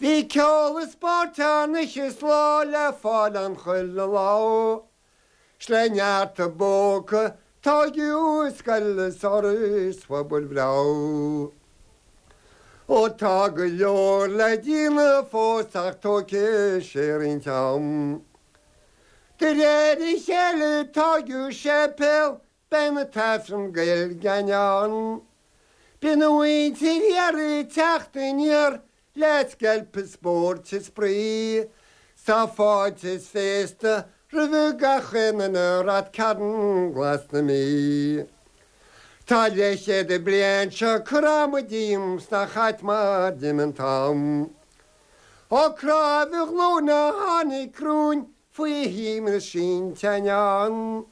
Bhí ceol is spóirt ann oíche is ló le fáil ann chuile lá ó Is le neart a bpóca tóigeadh scoil is Áras Phobail breá ó Ó tá go leor le déanamh fós ach tógfaidh sé roinnt am De réir a chéile tóigeadh séipéal Beidh an tAifreann Gaeilge ann. Beidh an mhuintir thiar ag teacht aniar le scléip is spóirt is spraoi. Tá fáilte is féasta roimh gach aon i Ráth Cairn Glas na Mí. Tá leithchéad bliain seo curtha a'm díom 's nach ait mar d'imigh an t-am. Ó cráimhe ghlúine a tháinig cruinn faoi shuim na sínteán.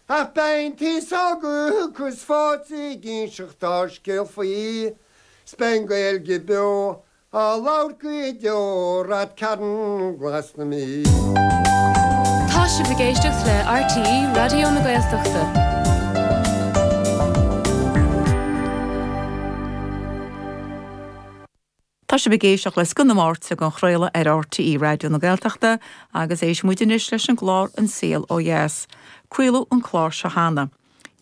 Ach baintí ságadh agus fáilte ag inseacht ár scéal faoi, 's beidh an Ghaeilge beo á labhairt go deo i Ráth Cairn glas na Mí. Tá sibh ag éisteacht le RTÉ Raidió na Gaeltachta. Tá sibh ag éisteacht le Scoth na Máirte dhá chraoladh ar RTÉ Raidió na Gaeltachta agus éistfidh muid anois leis an gclár An Saol Ó Dheas. Craoladh an clár seo cheana.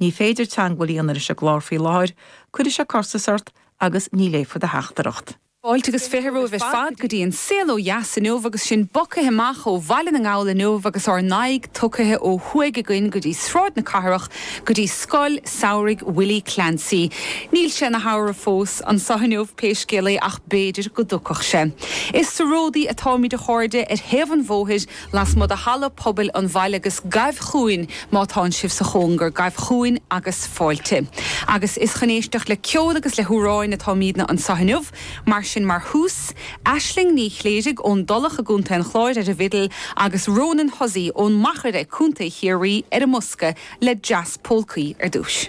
Ní féidir teangmháil a dhéanamh leis an gclár faoi láthair, cuirfidh sé costas ort agus ní léifear do theachtaireacht. Fáilte agus fiche romhaibh ar fad go dtí An Saol Ó Dheas inniu agus sinn bogthaithe amach ó Bhaile na nGall inniu agus ár n-aghaidh tugthaithe ó thuaidh againn go dtí Sráid na Cathrach, go dtí scoil samhraidh Willie Clancy. Níl sé ina shamhradh fós anseo inniu pé scéal é ach b'fhéidir go dtiocfadh sé. Is sa ródaí atáimid a chairde, ar thaobh an bhóthair lasmuigh de halla pobail an bhaile agus gabh chugainn má tánn sibh sa chóngar, gabh chugainn agus fáilte. Agus is chun éisteacht le ceol agus le hamhráin atáimidne anseo inniu. Mar sin mar thús, Aisling Ní Chléirigh ón dTulach i gContae an Chláir ar an bhfidil agus Ronan Hussey ón Machaire, Contae Chiarraí ar an mbosca le dreas pólcaí ar dtús.